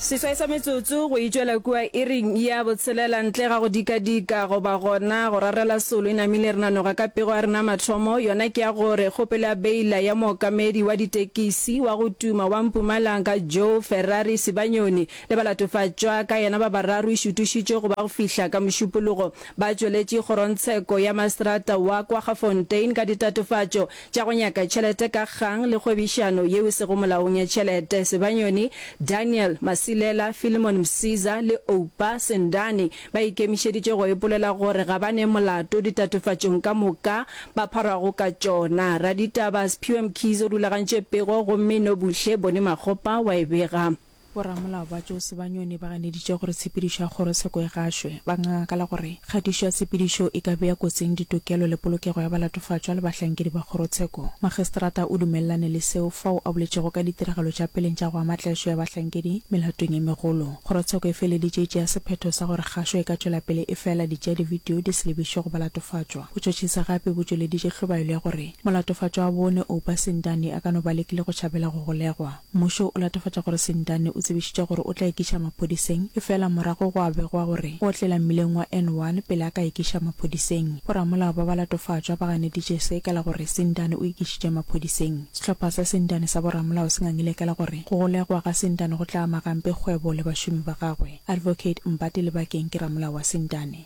seswai sa metsotso go itšwela kua iring ya botshelela ntle ga go dikadika goba gona go rarela solo e namile re nanoga ka pego ya rena mathomo yona ke ya gore kgopelo ya beila ya mookamedi wa ditekisi wa go tuma wa mpumalanga joe ferrari sebanyoni le balatofatšwa ka yena ba bararo e šutišitšwe go ba go fihla ka mošupologo ba tšweletše kgorontsheko ya maserata wa kwa gafontein ka ditatofatšo tša go nyaka tšhelete ka kgang le kgwebišano yeo e sego molaong ya tšhelete, Sebanyoni, Daniel, Masilela, Philemon Msiza le Oupa, Sendane, ba ikemišeditše go ipolela gore ga ba ne molato ditatofatšong ka moka ba pharwago ka tšona. Raditaba Sphiwe Mkhize o rulagantše pego gomme Nobuhle Bone Makgopa wa e bega. Boramolao ba Jose ba Nyone ba ganeditše gore tshepedišo ya kgorotsheko e gašwe. Ba ngangakala gore kgatišo ya tshepedišo e ka bea kotsing ditokelo le polokego ya balatofatšwa le bahlankedi ba kgorotsheko. Magistrata o dumelelane le seo fao a boletšego ka ditiragalo tša peleng tša go ama tlaišo ya bahlankedi melatong e megolo. Kgorotsheko e feleditše e tšea sephetho sa gore kgašo e ka tšwela pele efela ditša divideo di se lebišwe go balatofatšwa. Botšhotšhisi gape bo tšweleditše hlobaelo ya gore molatofatšwa wa bone, Oupa Sindani, a ka no ba lekile go tšhabela go golegwa. Mmušo o latofatša gore Sentane o tsebišitše gore o tla ekiša maphodiseng efela morago gwa begwa gore o otlela mmileng wa N one pele a ka ekiša maphodiseng. Boramolao ba ba latofatšwa ba ganeditše se ka la gore Sentane o ekišitše maphodiseng. Sehlopha sa Sentane sa boramolao se ngangile ka la gore go golegwa ga Sentane go tla ama gampe kgwebo le bašomi ba gagwe. Advocate Mbati Lebakeng ke ramolao wa Sentane.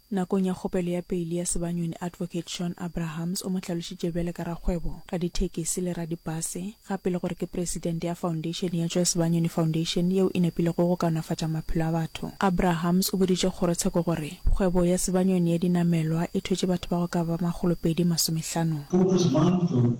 Nakong ya kgopelo ya peili ya sebanyoni Advocate Shawn Abrahams o mo hlalošitše bjale ka rakgwebo, radithekisi le radibase, gape le gore ke presidente ya foundation ya Joe Sebanyoni Foundation yeo e nepilego go kaonafatša maphelo a batho. Abrahams o boditše kgorotsheko gore kgwebo ya sebanyoni ya dinamelwa e thwetše batho ba go ka ba makgolopedi masomehlano. Focus Month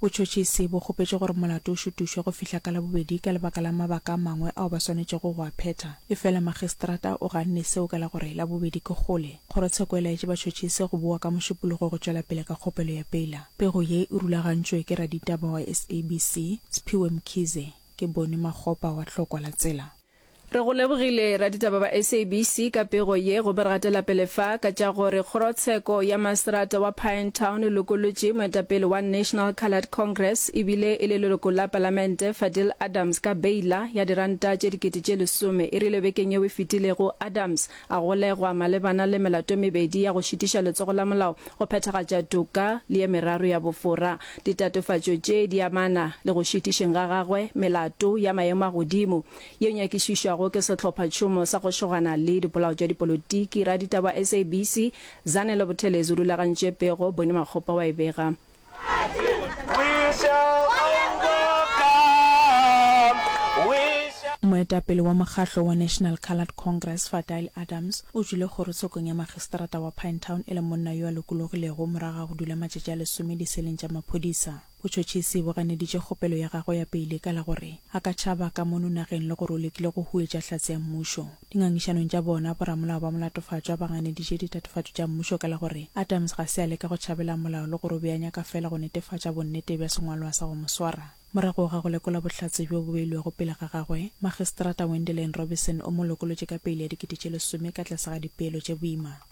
Botšhotšhisi bo kgopetše gore molato o šutušwe go fihla ka Labobedi ka lebaka la mabaka a mangwe ao ba swanetšego go a phetha. Efela Magistrata o ganne seo ka la gore Labobedi ke kgole. Kgorotsheko e laetše batšhotšhisi go bowa ka Mošupologo go tšwela pele ka kgopelo ya peila. Pego ye e rulagantšwe ke raditaba wa SABC, Sphiwe Mkhize. Ke Boni Makgopa wa Tlhokwa la Tsela. Re go lebogile raditaba ba SABC ka pego ye gobe re gatela pele fa ka tša gore kgorotsheko ya maserata wa Pinetown e lokolotše moetapele wa National Coloured Congress e bile e le leloko la Palamente Fadil Adams ka beila ya diranta tše dikete tše lesome. E rile bekeng yeo e fetilego Adams A golegwa malebana le melato e mebedi ya go šitiša letsogo la molao go phethagatša toka le ye meraro ya bofora. Ditatofatšo tše di amana le go šitišeng ga gagwe melato ya maemo a godimo yeo nyakišišwago ke Sehlophatšhomo sa go Šogana le Dipolao tša Dipolotiki. Raditaba wa SABC, Zanele Buthelezi o rulagantše pego, Bonnie Makgopa wa e bega. Moetapele wa mokgahlo wa National Coloured Congress, Fadile Adams, o tšwile kgorotshekong ya magistrata wa Pinetown e le monna yo a lokologilego morago ga go dula matšatši a lesome diseleng tša maphodisa. Botšhotšhisi bo ganeditše kgopelo ya gagwe ya peile ka la gore a ka tšhaba ka mono nageng le gore o lekile go huetša hlatse ya mmušo. Dingangišanong tša bona, boramolao ba molatofatšwa ba ganeditše ditatofatšo tša mmušo ka la gore Adams ga se a leka go tšhabela molao le go re o be a nyaka feela go netefatša bonnete bja sengwalwa sa go mo swara. Morago ga go lekola bohlatse bjo bo beilwego pele ga gagwe, Magistrata Wendelin Robison o mo lokolotše ka peile ya dikete tše lesome ka tlase ga dipeelo tše boima.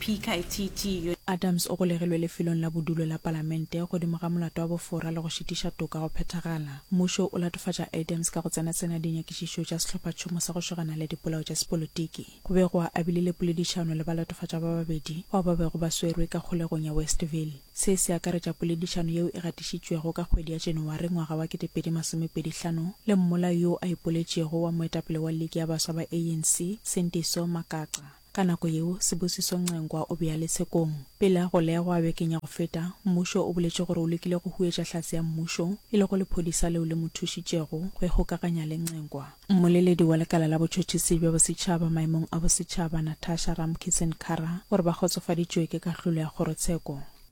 PKTT. Adams o golegilwe lefelong la bodulo la Palamente godimo ga molato wa bofora le go šitiša toka go phethagala. Mmušo o latofatša Adams ka go tsenatsena dinyakišišo tša sehlophatšhomo sa go šogana le dipolao tša sepolotiki. Go be go a bile le poledišano le balatofatša ba babedi bao ba bego ba swerwe ka kgolegong ya Westville. Se se akaretša poledišano yeo e gatišitšwego ka kgwedi ya Janawari ngwaga wa 2025 le mmolai yo a ipoletšego wa moetapele wa liki ya baswa ba ANC, Sendiso Makaca. Ka nako yeo, Sibusiso Ncenkwa o be a le tshekong. Pele go legwa bekeng ya go feta, mmušo o boletše gore o lekile go huetša hlatse ya mmušo, e lego lephodisa leo le mo thušitšego go ikgokaganya le Ncenkwa. Mmoleledi wa Lekala la Botšhotšhisi bja Bosetšhaba maemong a Bosetšhaba, Natasha Ramkisson-Kara, o re ba kgotsofaditšwe ke kahlolo ya kgorotsheko.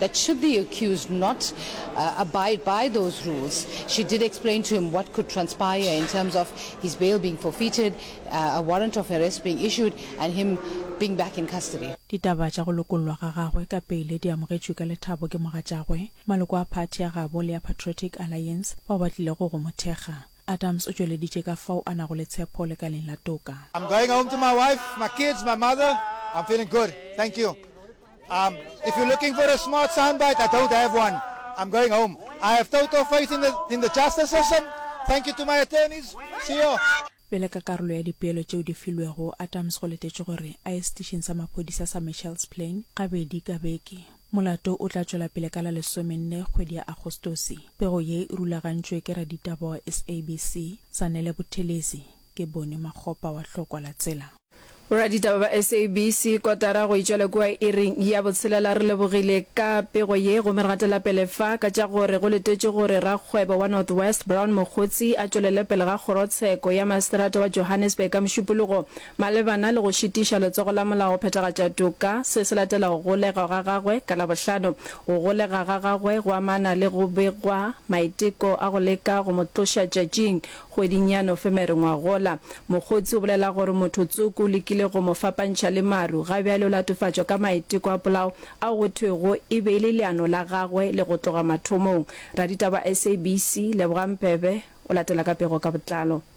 that should the accused not uh, abide by those rules, she did explain to him what could transpire in terms of his bail being forfeited, uh, a warrant of arrest being issued, and him being back in custody. Ditaba tša go lokollwa ga gagwe ka peile di amogetšwe ka lethabo ke mogatšagwe, maloko a phathi ya gabo le ya Patriotic Alliance bao ba tlilego go mo thekga. Adams o tšweleditše ka fao a nago le tshepo lekaleng la toka. I'm going home to my wife, my kids, my mother, I'm feeling good, thank you. Um, if you're looking for a smart soundbite, I don't have one. I'm going home. I have total faith in the, in the justice system. Thank you to my attorneys. See you. Bjale ka karolo ya dipeelo tšeo di filwego, Adams go letetšwe gore a ye setišing sa maphodisa sa Mitchell's Plain gabedi ka beke. Molato o tla tšwela pele ka la lesomenne kgwedi ya Agostose. Pego ye e rulagantšwe ke raditaba wa SABC, Zanele Buthelezi, ke Boni Makgopa wa Hlokwa la Tsela. Boraditaba ba SABC, kotara go e tšwela kua iring ya botshelela re lebogile ka pego ye gomme re gatela pele fa ka tša gore go letetšwe gore rakgwebo wa North West Brown Mogotsi a tšwelele pele ga kgorotsheko ya maseterata wa Johannesburg ka Mošupologo Malebana le go šitiša letsogo la molao go phethagatša toka, se se latela go golegwa ga gagwe ka Labohlano. Go golega ga gagwe go amana le go begwa maiteko a go leka go mo tloša tšatšing kgweding ya Nofemere ngwagola. Mokgotsi o bolela gore motho tsoko o lekile go mo fapantšha le maru, ga bjale o latofatšwa ka maiteko a polao ao go thwego e be e le leano la gagwe le go tloga mathomong. Raditaba wa SABC, Lebogang Mpebe, o latela ka pego ka botlalo.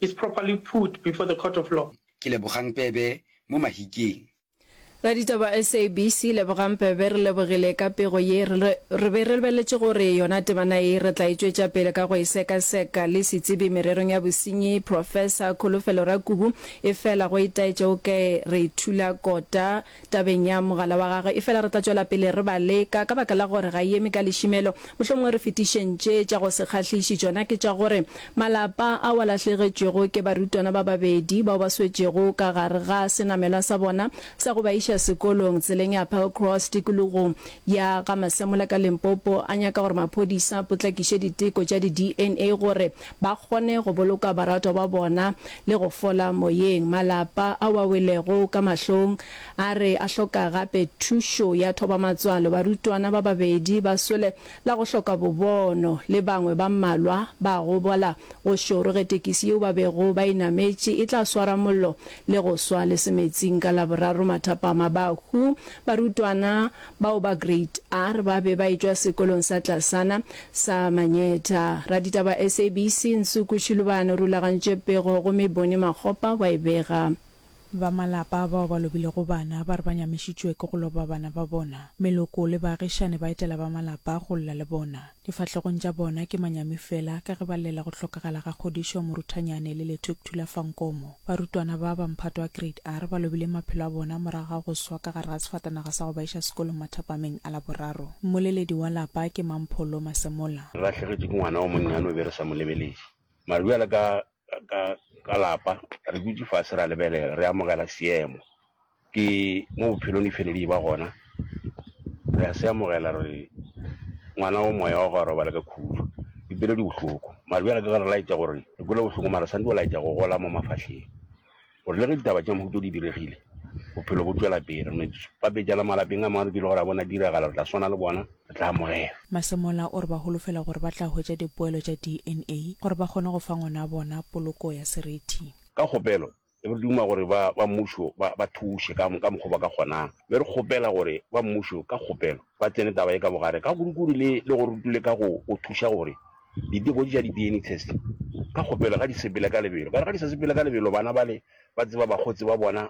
is properly put before the court of law. Ke Lebogang Pebe mo Mahikeng. Raditaba SABC, Lebogang Pebe, re lebogile ka pego ye. Re be re lebeletše gore yona temana ye re tla e tšwetša pele ka go e sekaseka le setsebi mererong ya bosenyi, Professor Kholofelo Rakubu, efela go itaetše o ka re thula kota. Tabeng ya mogala wa gagwe, efela re tla tšwela pele re ba leka, ka baka la gore ga e eme ka lešimelo. Mohlomongwe re fetišeng tše tša go se kgahliši, tšona ke tša gore malapa ao a lahlegetšwego ke barutwana ba babedi bao ba swetšego ka gare ga senamelwa sa bona sa go ba iša sekolong tseleng ya Applecross tikologong ya ga Masemola ka Limpopo a nyaka gore maphodisa a potlakiše diteko tša di-DNA gore ba kgone go boloka baratwa ba bona le go fola moyeng. Malapa ao a welego ka mahlong a re a hloka gape thušo ya thoba-matswalo. Barutwana ba babedi ba swele la go hloka bobono le bangwe ba mmalwa ba gobala go šoro ge tekisi yeo ba bego ba e nametše e tla swara mollo le go swa lesemetsing ka Laboraro mathapama. Bahu barutwana Bao ba Grade R ba be ba etšwa sekolong sa tlasana sa Manyetha. Raditaba ba SABC, Nsuku Shilubane o rulagantše pego gomme Bonnie Makgopa wa e bega. Ba malapa a bao ba lobilego bana ba re ba nyamišitšwe ke go loba bana ba bona. Meloko le baagišani ba etela ba malapa go lla le bona. Difahlegong tša bona ke manyami fela ka ge ba llela go hlokagala ga kgodišo, moruthanyane le Lethuc Thula fa Nkomo. Barutwana ba ba mphato wa Grade R ba lobile maphelo a bona morago ga go swa ka gare ga sefatanaga sa go ba iša sekolong mathapameng a Laboraro. Mmoleledi wa lapa ke mang Pholo Masemola. Re lahlegetšwe ke ngwana wo monnyane o be re sa mo lebeledi. Mara bjale ka lapa re dutše fase ra lebelela, re amogela seemo. Ke mo bophelong di fele di ba gona, re a se amogela gore ngwana wa moya wa go a robala ka khudu. Dipelo di bohloko, mare bjale ka ge re laetša gore re kwele bohloko, mare re swanetše go laetša go gola mo mafahleng gore le ge ditaba tša mohuta o di diregile, bophelo bo tšwela pele. Re no ipapetša le malapeng a mangwe re dule gore a bona diragala, re tla swana le bona, re tla amogela. Masemola o re ba holofela gore ba tla hwetša dipoelo tša DNA gore ba kgone go fa ngwanabona poloko ya seriti. Ka kgopelo, Re duma gore ba ba mmušo ba ba thuše ka ka mokgwa o ba ka kgonang. Be re kgopela gore ba mmušo ka kgopelo ba tsene taba ye ka bogare ka kurukuru le le go rutule ka go go thuša gore diteko tša di-DNA test ka kgopelo ga di sepele ka lebelo. Ka re ga di sa sepele ka lebelo bana bale ba tseba bakgotsi ba bona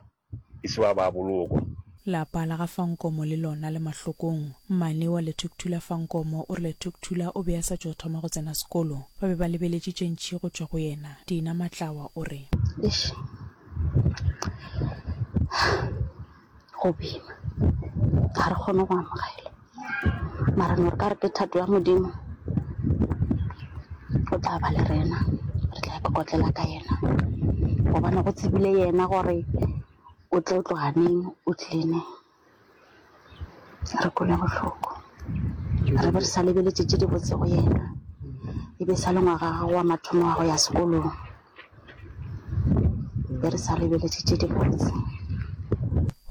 e se ba ba bolokwa. Lapa la ga Fankomo le lona le mahlokong. Mmane wa Lethukuthula Fankomo o re Lethukuthula o be a sa tšo thoma go tsena sekolo. Ba be ba lebeletše tše ntši go tšwa go yena. Dina Matlawa o re. Eish, go boima. Ga re kgone go amogela. Mara ne re ka re ke thato ya Modimo, o tla ba le rena. Re tla ikokotlela ka yena gobane go tsebile yena gore o tlo tloga neng o tlile neng. Re kwele bohloko re be re sa lebeletse tše di botse go yena e be sa le ngwaga gago wa mathomo wa go ya sekolong be re sa lebeletse tše di botse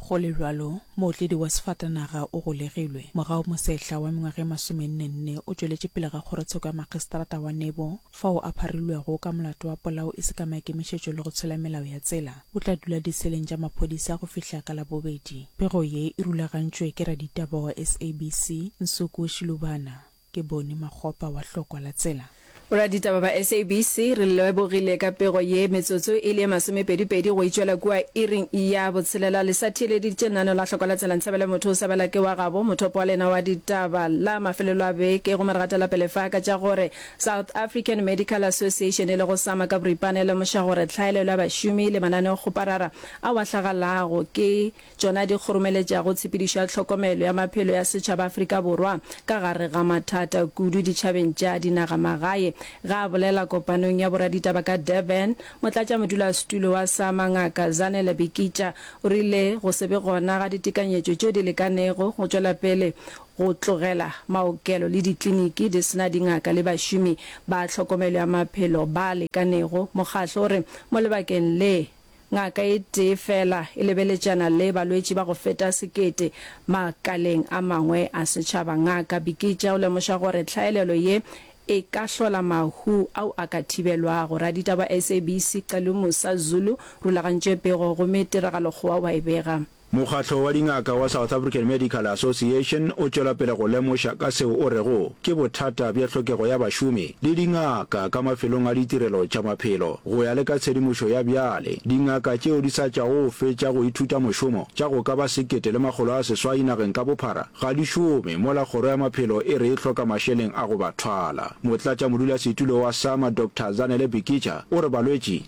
Go le bjalo, mootledi wa sefatanaga o golegilwe. Morago mosehla wa mengwaga e masomenne-nne o tšweletše pele ga kgorotsheko ya makgiseterata wa Nebo, fao a pharilwego ka molato wa polao e se ka maikemišetšo le go tshela melao ya tsela, o tla dula diseleng tša maphodisa go fihla ka Labobedi. Pego ye e rulagantšwe ke raditaba wa SABC, Nsuku Shilubana. Ke Bonnie Makgopa wa Hlokwa la Tsela. Boraditaba ba SABC re lebogile ka pego ye. Metsotso e le ye masomepedipedi go e tšwela kua iring ya botshelela, le sa theeleditše nano la Hlokwa la Tsela. Nthabela Motho o sa bela ke wa gabo, mothopo wa lena wa ditaba la mafelelo a beke, gomme re gatela pele fa ka tša gore, South African Medical Association e lego sama ka boripana e lemoša gore tlhaelelo ya bašomi le mananeokgoparara ao a hlagalago ke tšona di kgoromeletšago tshepedišo ya tlhokomelo ya maphelo ya setšhaba Afrika Borwa ka gare ga mathata kudu ditšhabeng tša dinagamagae. Ge a bolela kopanong ya boraditaba ka Durban, motlatšamodulasetulo wa sama Ngaka Zanele Bikitsha o rile go se be gona ga ditekanyetšo tšeo di lekanego go tšwela pele Go tlogela maokelo le dikliniki di se na dingaka le bašomi ba tlhokomelo ya maphelo ba lekanego, mokgatlo o re mo lebakeng le, ngaka e tee feela e lebeletšana le balwetši ba go feta sekete. Makaleng a mangwe a setšhaba, Ngaka Bikitsha o lemoša gore tlhaelelo ye e ka hlola mahu ao a ka thibelwago. Raditaba wa SABC Xelumus Zulu rulagantše pego gomme tiragalokgowa wa e bega. Mokgatlo wa dingaka wa South African Medical Association o tšwela pele go lemoša ka seo o rego ke bothata bja tlhokego ya bašomi le dingaka ka mafelong a ditirelo tša maphelo. Go ya le ka tshedimošo ya bjale, dingaka tšeo di sa tšwago go fetša go ithuta mošomo tša go ka ba sekete le makgolo a seswai nageng ka bophara ga di šome mola kgoro ya maphelo e re e hloka mašeleng a go ba thwala. Motlatšamodulasetulo wa SAMA Doctor Zanele Bikica o re balwetši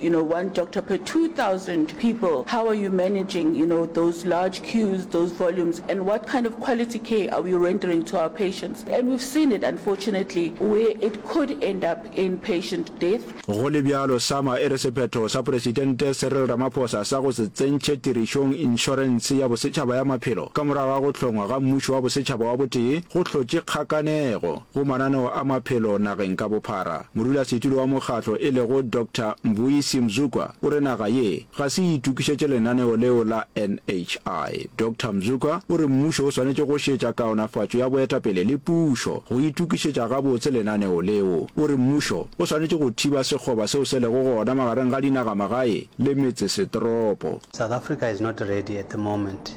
You know one doctor per 2000 people, how are you managing you know those large queues, those volumes and what kind of quality care are we rendering to our patients and we've seen it unfortunately where it could end up in patient death. Go le bjalo, SAMA e re sephetho sa Poresitente Cyril Ramaphosa sa go se tsentšhe tirišong inšorense ya bosetšhaba ya maphelo ka morago ga go hlongwa ga Mmušo wa Bosetšhaba wa Botee go hlotše kgakanego. go mananeo a maphelo nageng ka bophara. Modulasetulo wa mokgatlo e lego Doctor Mbuyisi Mzukwa o re naga ye ga se e itokišetše lenaneo leo la NHI. Doctor Mzukwa o re mmušo o swanetše go šetša kaonafatšo ya boetapele le pušo go itokišetša gabotse lenaneo leo. O re mmušo o swanetše go thiba sekgoba seo se lego gona magareng ga dinagamagae le metsesetoropo. South Africa is not ready at the moment.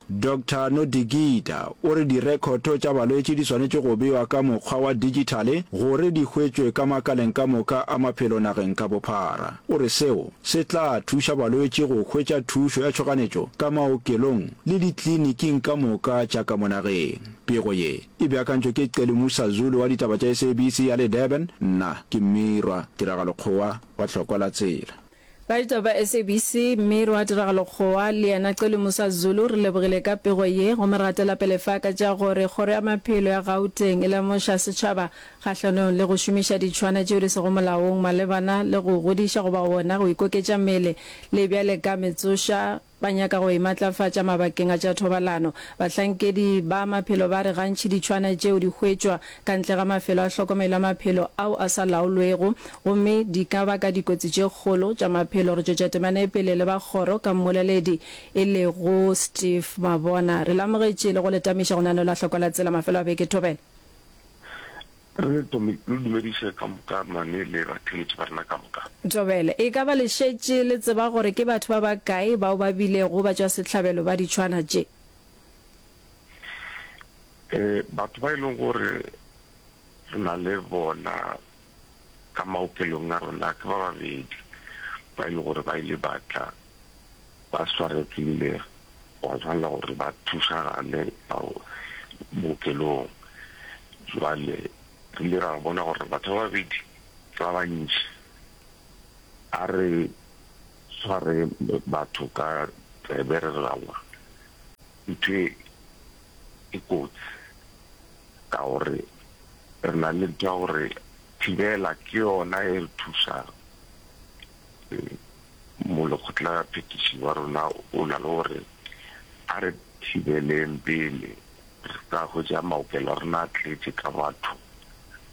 Doctor Nodigida o re direkhoto tša balwetši di swanetše go bewa ka mokgwa wa digitale gore di hwetšwe ka makaleng ka moka a maphelo nageng ka bophara. O re seo se tla thuša balwetši go hwetša thušo ya tšhoganetšo ka maokelong le ditliniking ka moka tša ka mo nageng. Pego ye e beakantšwe ke Celi Musa Zulu wa ditaba tša SABC ya le Durban, nna ke Mmirwa Tiragalokgowa wa Tlhokola Tsela. Baeta ba SABC, mme Rwa Tiragalo Kgowa le yena Cele Musa Zulu re lebogile ka pego ye gomme re gatela pele fa ka tša gore Kgoro ya Maphelo ya Gauteng e lemoša setšhaba kgahlanong le go šomiša ditšhwana tšeo di sego molaong malebana le go godiša goba wona go ikoketša mele le bjale ka metsoša Ba nyaka go e matlafatša mabakeng a tša thobalano. Bahlankedi ba maphelo ba re gantši ditšhwana tšeo di hwetšwa ka ntle ga mafelo a hlokomelo ya maphelo ao a sa laolwego gomme di ka baka dikotsi tše kgolo tša maphelo. Re tšwetša temana e pele le ba kgoro ka mmoleledi e lego Steve Mabona. Re lamogetše le go le tamiša go nanola hloko la tsela mafelo a beke thobela. Re lo dumediše ka moka mane le batheletši ba rena ka moka. Tobele, e ka ba le šetše le tseba gore ke batho ba bakae bao ba bilego batšwasehlabelo ba ditšhwana tše? Ee, batho ba e lego gore re na le bona ka maokelong a rena ke ba babedi ba e lego gore ba ile ba tla ba swaregile gwa bjala gore ba thušagale ka bookelong. Jwale re ile ra bona gore batho ba babedi ba bantši, a re tshware batho ka tsebe re re aowa, ntho e e kotsi ka gore re na le ntho ya gore thibela ke yona e re thušago. Molekgotlaphethiši wa rona o na le go re, A re thibeleng pele re se ka hwetša maokelo a rena a tletše ka batho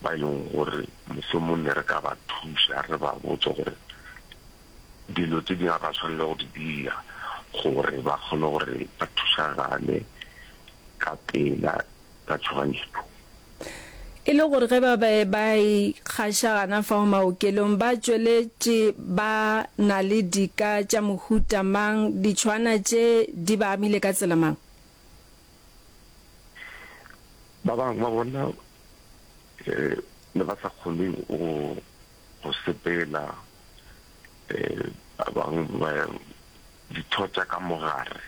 ba e lego gore mohlomong ne re ka ba thuša re ba botse gore dilo tše dingwe ga ba swanele go di dira gore ba kgone gore ba thusagale ka pela. ka tšhoganyetšo. E le gore ge ba be ba e kgaša gana fao maokelong, ba tšweletše ba na le dika tša mohuta mang, ditšhwana tše di ba amile ka tsela mang? Ba bangwe ba bona ne ba sa kgone go sepela, ba bangwe ba Ditho tša ka mogare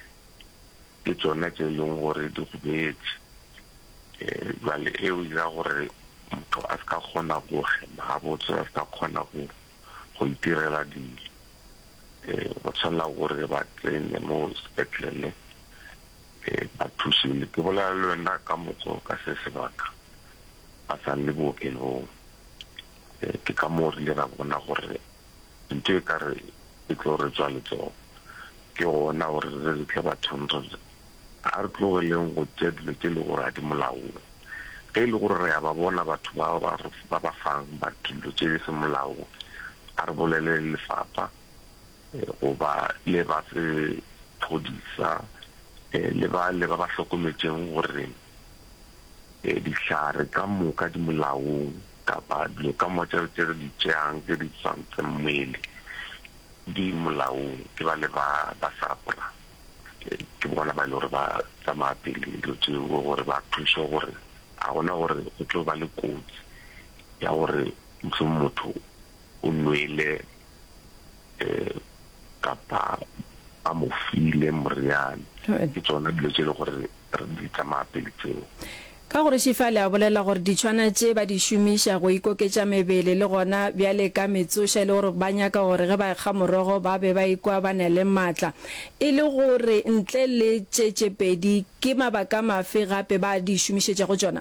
ke tšona tše e leng gore di go beetše. Jwale e o dira gore motho a se ka kgona go hema gabotse, a se ka kgona go go itirela dilo. Go tshwanela gore re ba tsenye mo sepetlele ba thusiwe. Ke bolela le wena ka moka o ka se sebaka ba sa le bookelong. Ke ka moo re ile ra bona gore ntho e ka re e tlo re tswa letsogo. Ke gona gore re tle bathong re re, A re tlogeleng go tša dilo tše e lego gore ga di molaong. Ge e le gore re a ba bona batho bao ba re ba ba fang ba dilo tše di seng molaong, a re bolelele lefapha goba le ba sephodisa le bale ba ba hlokometšego gore e, dihlare ka moka di molaong, kapa dilo ka moka tše re di tšeang tše di swantseng mmele di molaong, ke bale ba ba sapra, e, ke bona ba e le gore ba tsamaya pele dilo tšeo gore ba thuše gore a gona gore go tlo ba le kotsi ya gore mohlomong motho o nwele kapa ba mo file moriane. Ke tsona dilo tše e le gore re di tsamaya pele tseo. Ka gore Shifale a bolela gore ditšhwana tše ba di šomiša go ikoketša mebele le gona bjale ka metsoša e le gore ba nyaka gore ge ba ekga morogo ba be ba ikwa ba na le matla. E le gore ntle le tše tše pedi ke mabaka mafe gape ba di šomišetšago tšona?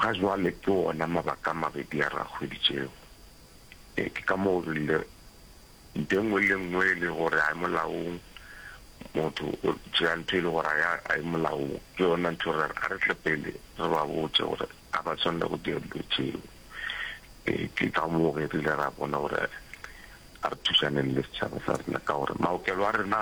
Ga jwale ke wona mabaka a mabedi a re a hweditšego. Ee, ke ka moo o rile, Ntho e nngwe le e nngwe e le gore ga e molaong, motho o tšea ntho e le gore ga e molaong, ke yona ntho re re, a re tle pele re ba botše gore ga ba swanela go dira dilo tšeo. Ee, ke ka moo ge re ile ra bona gore a re thušaneng le setšhaba sa rena ka gore maokelo a rena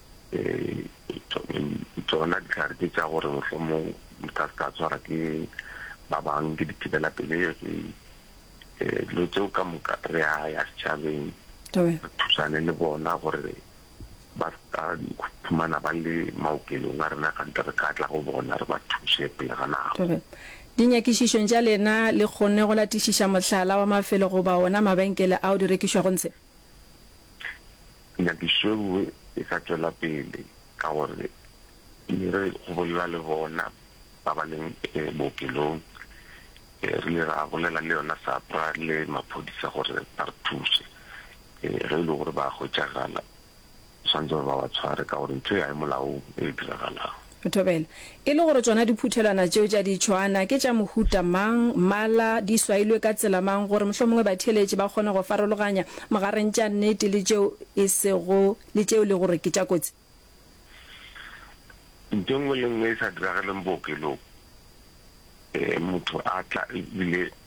Tšona dihlare tše tša gore mohlomong di ka se ka tshwara ke ba bang ke dithibelapelegi, dilo tseo ka moka re a ya setšhabeng re thusane le bona gore ba se ka iphumana ba le maokelong a rena kgante re ka tla go bona re ba thuse pele ga nako. Dinyakišišong tša lena le kgonne go latišiša mohlala wa mafelo goba wona mabenkele ao di rekišwago ntshe? Nyakišo e nngwe e ka tšwela pele ka gore e re go bolela le bona ba ba leng bookelong. Re ile ra bolela le yona SAPRA le maphodisa gore ba re thuse. Ge e le gore ba a hwetšagala, ba swanetše gore ba ba tshware ka gore ntho e ga e molaong e diragalago. O thobela. E le gore tšona diphuthelwana tšeo tša ditšhoana ke tša mohuta mang, mmala, di swailwe ka tsela mang gore mohlomongwe batheeletši ba kgone go farologanya mogareng tša nnete le tšeo e sego le tšeo le gore ke tša kotsi. Ntho e nngwe le nngwe e sa diragaleng bookelong, motho a tla ebile.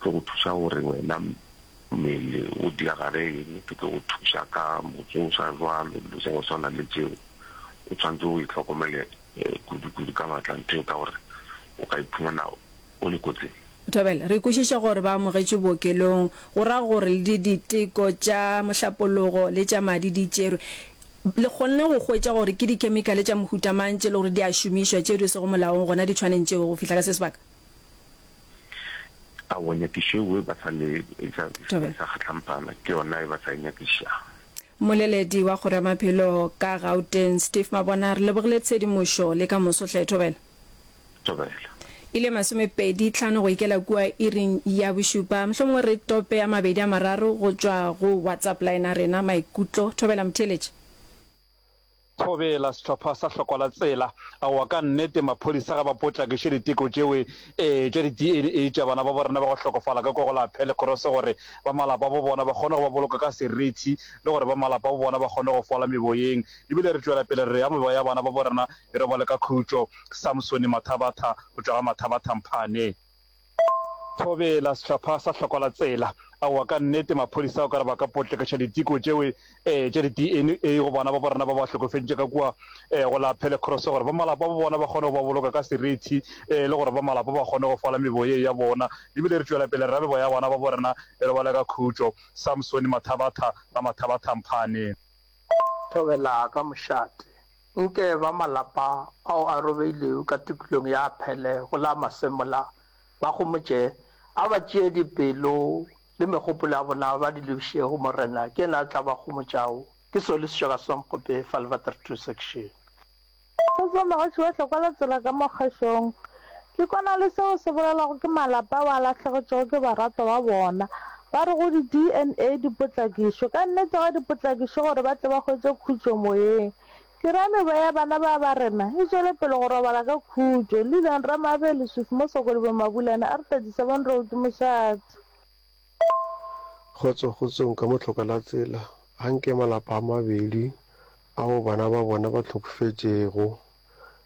tlo go thuša gore wena mmele o diagale eng, ke tlo go thuša ka motsoša jwalo, dilo tša go swana le tšeo. O tshwanetse o itlhokomele kudu-kudu ka matla nthweo ka gore o ka iphumana o le kotsing. Thobela, re kwešiša gore ba amogetšwe bookelong, go ra gore le di diteko tša mohlapologo le tša madi di tšerwe. Le kgonne go hwetša gore ke dikhemikhale tša mohuta mang tše le gore di a šomišwa tšeo di sego molaong gona ditšhwaneng tšeo go fihla ka se sebaka? Aowa, nyakišo eo e ba sa le e sa e sa kgatlhampana ke yona e ba sa e nyakišago. Mmoleledi wa Kgoro ya Maphelo ka Gauteng, Steve Mabona, re lebogile tshedimošo le ka moso hle. Thobela. Thobela. E le masomepedi tlhano go ikela kua iring ya bošupa. Mohlomongwe re tope a mabedi a mararo go tšwa go WhatsApp line a rena. Maikutlo. Thobela, motheeletši. Thobela, Sehlopha sa Hloko la Tsela, Aowa, ka nnete, maphodisa ga ba potlakiše diteko tšeo ee tša di-DNA tša bana babo rena ba go hlokofala ka kua go la Pelekoroso gore ba malapa abo bona ba kgone go ba boloka ka serithi le gore ba malapa abo bona ba kgone go fola meboyeng. E bile re tšwela pele re re ya meboya ya bana babo rena e robale ka khutšo. Samsone Mathabatha, go tšwa ga Mathabatha Mphane. Thobela, Sehlopha sa Hloko la Tsela. Aowa, ka nnete, maphodisa o ka re ba ka potlekiša diteko tšeo e, e, tša di-DNA go bana ba bo rena ba ba hlokofeditše ka kua e, go la Pelekroso, gore ba malapa ba bona ba kgone go ba boloka ka serithi e, le gore ba malapa ba kgone go fola mebo ye ya bona. Re bile re tšwela pele re ra mebo ya bana ba bo rena e robale ka khutšo. Samsoni Mathabatha, Ramathabatha Mphane. Thobela, Ka mošate, Nke ba malapa ao a robegilego ka tikolong ya Aphele go la Masemola ba homotše, a ba tšee dipelo le megopolo ya bona ba di lebiše go Morena, ke yena a tla ba homotšago. Ke seo le se tšwa ka Swankgope fa le bata re thuswe ke šeng. Go tšwa Mogatši wa Tlokwa la Tsela ka mo Kgešong. Ke kwana le seo se bolelwago ke malapa ao a lahlegetšwego ke baratwa ba bona. Ba re go di-DNA di potlakišwe. Ka nnete ga di potlakišwe gore ba tle ba hwetše khutšo moyeng. Ke ra mewa ya bana ba ba rena e tšwele pele go robala ka khutšo. Lillian Ramabe, Leswiswi mo Sokodibo Mabulana, R, 37 Road, ke mošate. Kgotso, kgotsong ka motlhoka la tsela. Ga nke malapa a mabedi ao bana ba bona ba hlokofetšego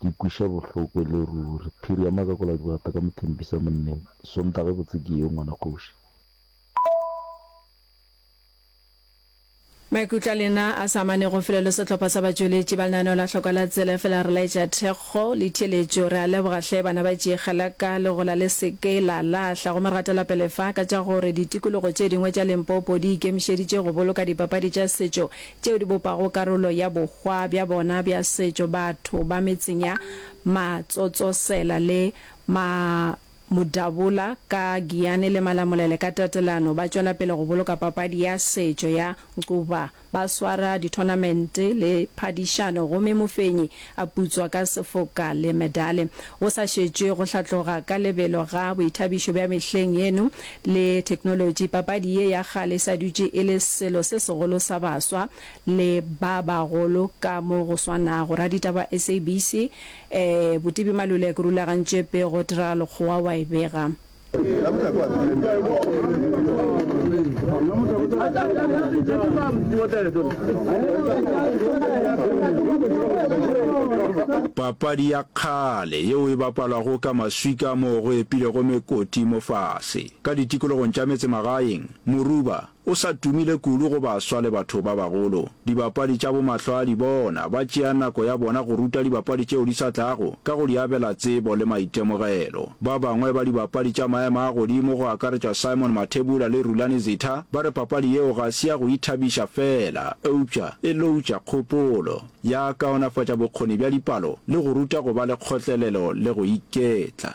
Ke kweša bohloko e le ruri. Phiri ya makakola dibata ka mothempisa monneng. Sontaga e botse ke eo, ngwana kgoši. Maikutlo a lena a sa amanego felo le sehlopha sa batšweletši ba lenaneo la Hlokwa la Tsela efela re laetša thekgo le theeletšo. Re a leboga hle bana ba Tšiegeleka, legola le se ke la lahla go mergatelopele fa ka tša gore ditikologo tše dingwe tša Limpopo di ikemišeditše go boloka dipapadi tša setšo tšeo di bopago karolo ya bohwa bja bona bja setšo, batho ba metseng ya Matsotsosela le Ma Modabola ka Giyane le Malamulele ka tatelano ba tšwela pele go boloka papadi ya setšo ya Ncuva. Ba swara dithonamente le phadišano gomme mofenyi a putswa ka sefoka le medale, go sa šetšwe go hlatloga ka lebelo ga boithabišo bja mehleng yeno le theknolotši, papadi ye ya kgale e sa dutše e le selo se segolo sa baswa le ba bagolo ka mo go swanago. Raditaba SABC, ee, Botibi Malulek rulagantše pego Tira Lekgowa wa e bega. Papadi ya kgale yeo e bapalwago ka maswika moo go epilego mekoti mofase ka ditikologong tša metsemagaeng, Moruba, O sa tumile kudu go baswa le batho ba bagolo. Dibapadi tša bomahlwaadi bona ba tšea nako ya bona go ruta dibapadi tšeo di sa tlago ka go di abela tsebo le maitemogelo. Ba bangwe ba dibapadi tša maemo a godimo go akaretšwa Simon Mathebula le Rulani Zitha ba re papadi yeo ga se ya go ithabiša feela eupša e loutša kgopolo, ya kaonafatša bokgoni bja dipalo le go ruta go ba le kgotlelelo le go iketla.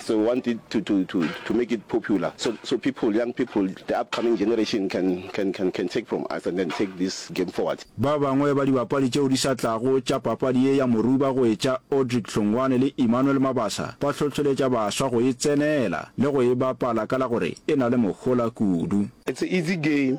So we want it to to to to make it popular so so people young people the upcoming generation can can can can take from us and then take this game forward. Ba bangwe ba dibapadi tšeo di sa tlago tša papadi ye ya Moruba go e tša Audrick Hlongwane le Emmanuel Mabasa ba hlohleletša baswa go e tsenela le go e bapala ka la gore e na le mohola kudu. It's a easy game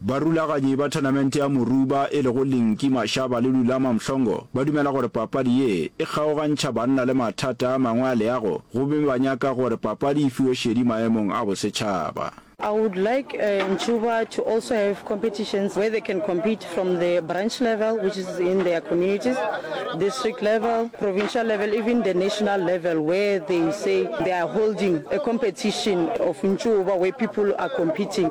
Barulaganyi ba thonamente ya Moruba e lego Linki Mashaba le Lulama Mhlongo ba dumela gore papadi ye e kgaogantšha banna le mathata a mangwe a leago gomme ba nyaka gore papadi e fiwe šedi maemong a bosetšhaba. I would like Ncuva to also have competitions where they can compete from the branch level which is in their communities, district level, provincial level, even the national level where they say they are holding a competition of Ncuva where people are competing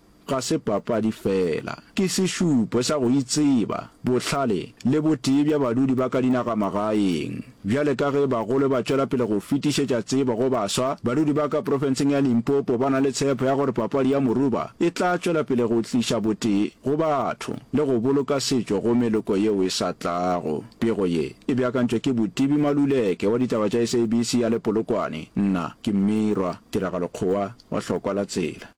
ga se papadi fela, ke sešupo sa go itseba, bohlale le botee bja badudi ba ka dinagamagaeng. Bjale ka ge bagolo ba tšwela pele go fetišetša tsebo go baswa, badudi ba ka profenseng ya Limpopo ba na le tshepo ya gore papadi ya moruba e tla tšwela pele go tliša botee go batho le go boloka setšo go meloko yeo e sa tlago. Pego ye e beakantšwe ke Botibi Maluleke wa ditaba tša SABC ya le Polokwane. Nna ke Mmirwa Tiragalo Kgowa wa Hlokwa la Tsela.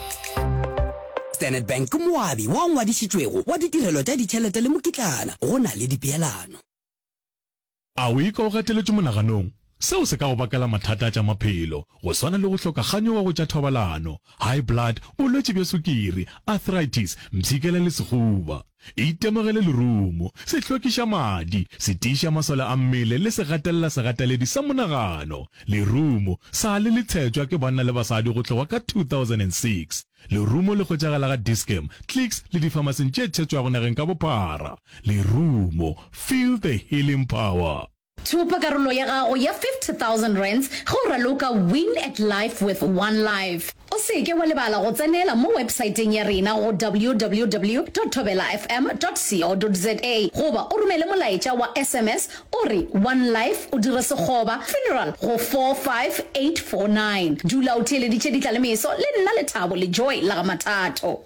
Standard Bank ke moabi wa ngwadišitšwego wa ditirelo tša ditšhelete le mokitlana go na le dipeelano. A o ikwa o gateletšwe monaganong? Seo se ka go bakela mathata a tša maphelo, go swana le go hloka kganyogo go tša thobalano, high blood, bolwetši bja sukiri, arthritis, mpshikela le sehuba. E itemogele lerumo, se hlwekiša madi, se tiiša masole a mmele le se gatelela segateledi sa monagano. Lerumo, sa le le tshetšwa ke banna le basadi go tloga ka 2006. Lerumo le hwetšagala ga Dis-Chem, Clicks le difamasing tše tshetšwago nageng ka bophara. Lerumo, feel the healing power! Thopa karolo ya gago ya R50,000 ge o raloka Win at Life with One Life. O se ke wa lebala go tsenela mo websaeteng ya rena go www.thobelafm.co.za goba o romele molaetša wa sms o re One Life o dire sekgoba, funeral, go 45849. Dula o theeleditše ditla le meso le nna Lethabo Lejoe la ga Mathato.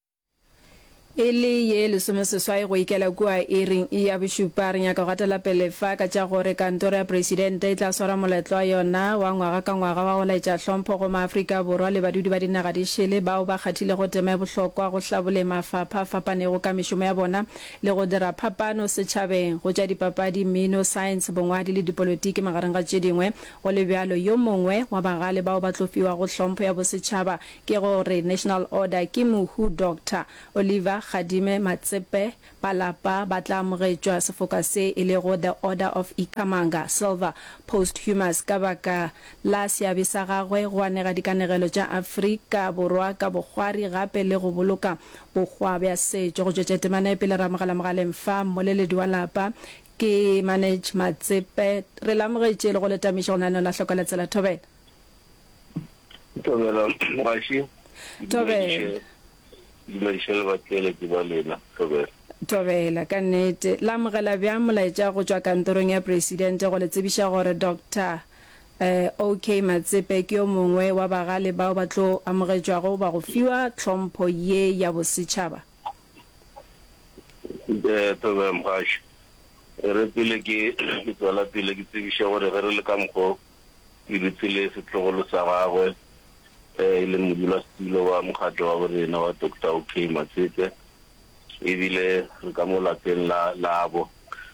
E le ye lesomeseswai go ikela kua iring ya bošupa, re nyaka go gatela pele fa ka tša gore Kantoro ya Presidente e tla swara moletlo wa yona wa ngwaga ka ngwaga wa go laetša hlompho go maAfrika Borwa le badudi ba dinaga di šele bao ba kgathilego tema e bohlokwa go hlaboleng mafapha a fapanego ka mešomo ya bona le go dira phapano setšhabeng go tša dipapadi, mmino, saense, bongwadi le dipolotiki magareng ga tše dingwe. Go le bjalo, yo mongwe wa bagale bao ba tlo fiwago hlompho ya bosetšhaba Ke go re National Order ke mohu Doctor Oliver Kgadime Matsepe Palapa ba tla amogetšwa sefoka se e lego The Order of Ikhamanga Silver Posthumous ka baka la seabe sa gagwe go anega dikanegelo tša Afrika Borwa ka bokgwari gape le go boloka bokgwa bja setšo. Go tšwetša temana pele re amogela mogaleng fa mmoleledi wa lapa ke Manage Matsepe. Re le amogetše le go le tamiša go naneola Hlokola Tsela Thobela. Tobela mogaši. Tobela. Dumediše le batheeletši ba lena. Tobela. Tobela, ka nnete. La amogela bjang molaetša go tšwa kantorong ya Presidente go le tsebiša gore Doctor eh, OK. Matsepe ke yo mongwe wa bagale bao ba tlo amogetšwago goba go fiwa tlhompho ye ya bosetšhaba? Eh, Tobela mogaši. E re pele ke, ke tswela pele ke tsebiše gore ge re le ka mokgwa o, e dutse le setlogolo sa gagwe ge e le modulasetulo wa mokgatlo wa borena wa Doctor OK. Matsete e bile re ka mo lapeng la labo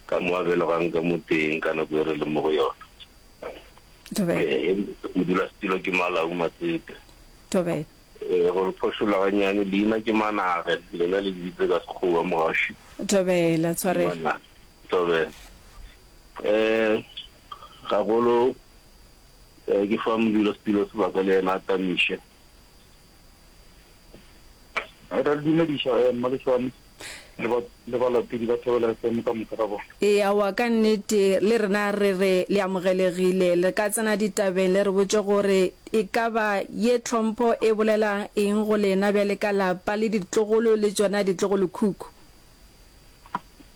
ka mo a belogang ka mo teng ka nako e re leng mo go yona. Ee, modulasetulo ke Malau Matsete. Ee, go le phošolla gannyane, leina ke Manage, lena le lebitse ka Sekgowa Mogaši. Tobela, tshwarelo. Tobela. Ee. Gagolo ke fa modula setulo sebaka le yena a tamiše. Re a le dumediša mma le Šwami le balatedi ba Thobela FM ka moka ga bona. Eawa ka nnete le rena re re le amogelegile. Le ka tsena ditabeng le re botše gore e ka ba ye tlhompho e bolela eng go lena bjale ka lapa le ditlogolo le tšona ditlogolokhukhu.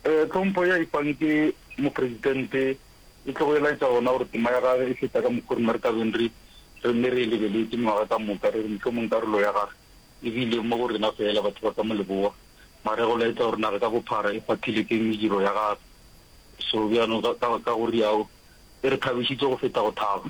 Tlhompho ye a e fang ke Mopresidente e tlogo e laetša gona gore tema ya gage e feta ka mokgwa o rena re tla beng re re nne re e lebeletše mengwaga ka moka, re re mohlomong karolo ya gage e bile mo go rena feela batho ba ka mo leboa, mara e go laetša gore naga ka bophara e kgwathile ke mediro ya gage. Sobjano ka go riao e re thabišitše go feta go thaba.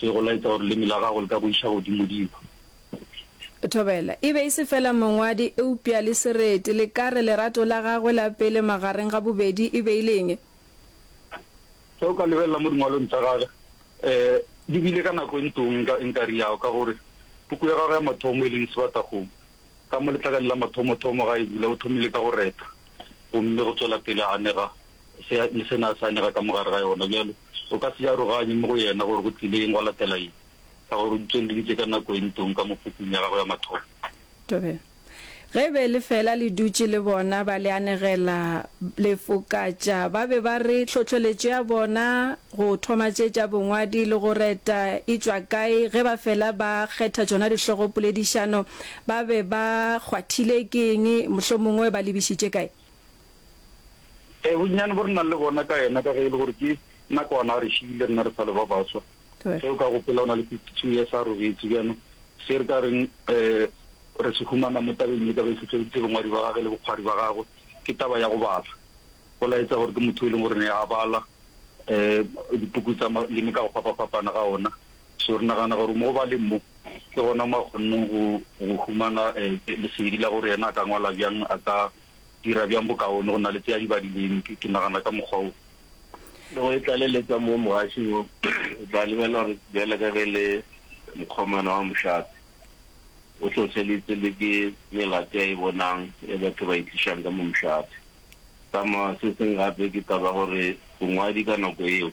Ke go laetša gore leme la gago le ka go iša godimodimo. Thobela e be e se feela mongwadi eupša le sereti. Le ka re lerato la gagwe la pele magareng ga bobedi e be e le eng? Ge o ka lebelela mo dingwalong tša gagwe, di bile ka nako e ntong ka enkare ya go, ka gore puku ya gagwe ya mathomo, e leng Sebatakgomo, ka mo letlakane la mathomothomo ga e bula, o thomile ka go reta gomme go tšwela pele a anega se le sena a sa anyega ka mo gare ga yona. Bjale o ka se e aroganye mo go yena gore go tlile eng gwa latela eng, ka gore o di tswelleditše ka nako e ntong ka mo pukung ya gagwe ya mathomo. Tobela. Ge e be lefeela le dutše le bona ba le anegela, lefokatša, ba be ba re tlhohleletšo ya bona go thoma tše tša bongwadi le go reta e tšwa kae, ge ba fela ba kgetha tšona dihlogopoledišano ba be ba kgwathile ke eng, mohlomongwe ba lebišitše kae. Ee, bonnyane bo re nang le bona ka yena, ka ge e le gore ke nakwana a re šiile rena re sa le ba baswa. Ge o ka gopola o na le fifty-two years a robetse bjano, se re ka reng um re se humana mo tabeng e ka be e hlohleleditse bongwadi ba gage le bokgwari ba gagwe ke taba ya go bala. Go laetsa gore ke motho e leng gore ne a bala um dipuku tsa maleme ka go fapafapana ga ona. So re nagana gore mo ba leng mo, ke gona mo a kgonneng go go humana lesedi la gore yena a ka ngwala bjang, a ka dira bjang bokaone go na le tse a di badileng, ke ke nagana ka mokgwa wo. Le go e tlaleletsa mo mogaši wo, o tla lebelela gore bjale ka ge e le mokgomana wa mošate, o hlohleleditse le ke melato e a e bonang e batho ba e tlišang ka mo mošate. Sa ma, se seng gape ke taba ya gore bongwadi ka nako yeo,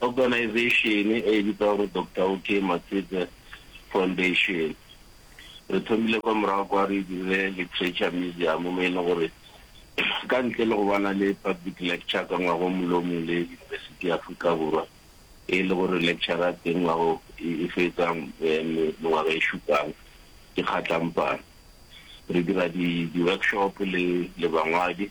Organization-e e e bitšwago gore Doctor OK Matsetse Foundation, re thomile kwa morago kwa re e dirile Literature Museum mo e leng gore ka ntle le go ba na le public lecture ka ngwaga o mongwe le o mongwe le University ya Afrika Borwa e le gore lecture ya teng ngwaga e fetsa mengwaga e šupang ke kgatlampana, re dira di-workshop le bangwadi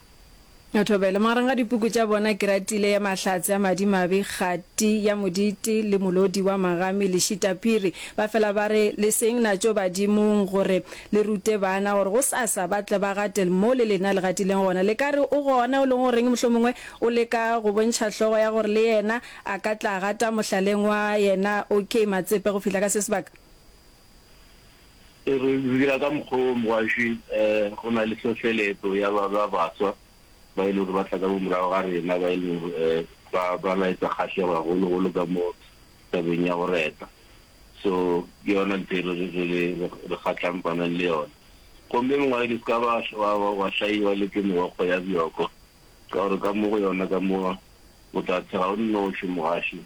O thobele magareng ga dipuku tša bona keratile ya mahlatse a madimabe, kgati ya modite le molodi wa magami le šitaphiri. Ba fela ba re, Le seng natšo badimong gore le rute bana gore gosasa ba tle ba gatel mo le lena le gatileng gona. Le ka re o gona o leng o reng mohlomongwe o leka go bontšha hlogo ya gore le yena a ka tla gata mohlaleng wa yena. OK, Matsepe go fihla ka se sebaka. Re dira ka mokgwa wo mogaswi, go na le hlohleletso ya ba ba baswa ba e lego gore ba tla ka morago ga rena ba e lego gore ba ba laetsa kgahlego gagologolo ka mo tabeng ya go reta. So ke yona ntho e re re re re kgatlhampanang le yona. Gomme mongwaledi o se ka ba wa wa wa hlaiwa le ke meokgo ya bjoko, ka gore ka mo go yona ka mo o tla tshela o nnoši mogaši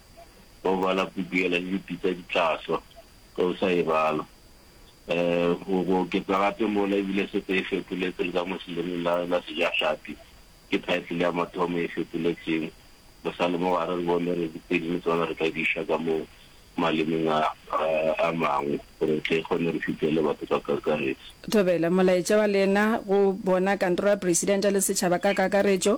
wa go bala puku yela le dipitsa di tla swa. ge o sa e bala. Go go oketsa gape mola, e bile sete e fetoletswe le ka mo selemeng la la Sejahlapi. Ke title ya mathomo e fetoletsweng. Re sa le mo gare, re bone re tse dingwe tsona re ka di iša ka mo malemeng a a mangwe gore re tle re kgone re fitlhele batho ka kakaretso. Thobela, molaetša wa lena go bona Kantoro ya Presidente le setšhaba ka kakaretšo.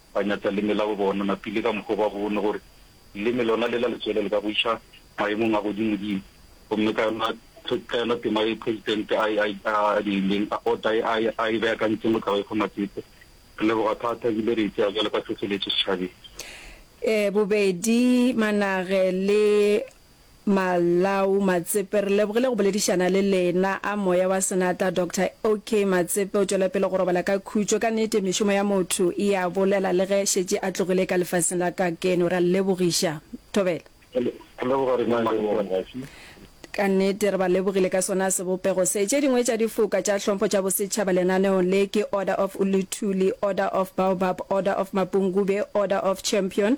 ba nyatša leme la bo bona mapile ka mokgwa o ba bone gore leme lona le la letswele le ka go iša maemong a godimodimo. Gomme ka yona ka yona tema ye Presidente a e a a dirileng a ota ye a e a e beakantseng go tla go e fa Matsete. Re leboga thata ebile re e tsea bjalo ka tlhohleletšo setšhabeng. Ee, bobedi Manage le Malawu Matsepe, re lebogile go boledišana le lena. A moya wa senatla Doctor OK. Matsepe o tšwela pele go robala ka khutšo. Ka nete mešomo ya motho e a bolela le ge šetše a tlogile ka lefaseng la kakeno. Re a lebogiša. Thobela. Re leboga rena le bona. Ka nete re ba lebogile ka sona sebopego se. Tše dingwe tša difoka tša hlompho tša bosetšhaba lenaneong le ke Order of Uluthuli, Order of Baobab, Order of Mapungube, Order of Champion,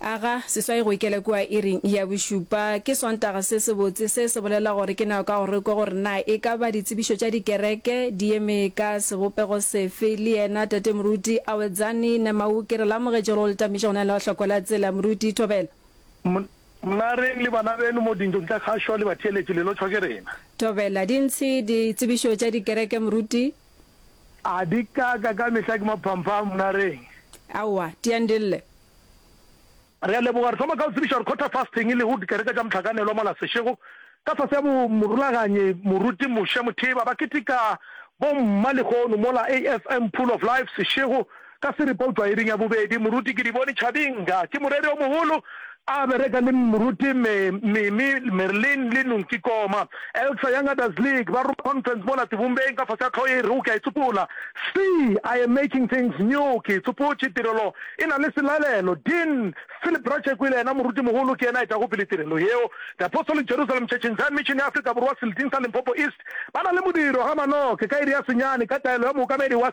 Aga seswai go ikela kua iring ya bošupa. Ke Sontaga se sebotse. Se se bolela gore ke nako ya go re kwe gore na e ka ba ditsebišo tša dikereke di eme ka sebopego sefe. Le yena Tate Moruti Awedzani Nemau ke re le amogetše gore o le tamiša go na le hloko la tsela. Moruti, Thobela. Mna reng le bana beno mo dintlong tša kgašo le batheeletši le lotšhwa ke rena. Thobela, Dintshi ditsebišo tša dikereke, Moruti. A di ka ka ka mehla ke maphampha a mnareng? Aowa, di a ndille. Re a leboga. Re thoma ka go tsebiša gore Quarter Fasting e lego dikereke tša mohlakanelwa mola sešego ka fase ga morulaganyi moruti Mushe Mutheba ba keteka bo mma lehono mola AFM Pool of Life sešego Ka seripa o tšwa iring ya bobedi. Moruti ke di bone Tšhabing ka. Ke moreri o mogolo. A bereka le Moruti Me, Mimi, Merlin le Nung Kikoma. Elsa Young Adults League ba roma conference mola Tivumbeng ka fase ga tlhogo e rego ke a e tsopola. C, I am making things new ke e tsopotše. Tirelo e na le selalelo. Dean Philip Ratšheku e le yena moruti mogolo ke yena a etago pele tirelo yeo. The Apostolic Jerusalem Church in Zion Mission ya Afrika Borwa Seleting sa Limpopo East ba na le modiro ga manoke ka iri ya senyane ka taelo ya mookamedi wa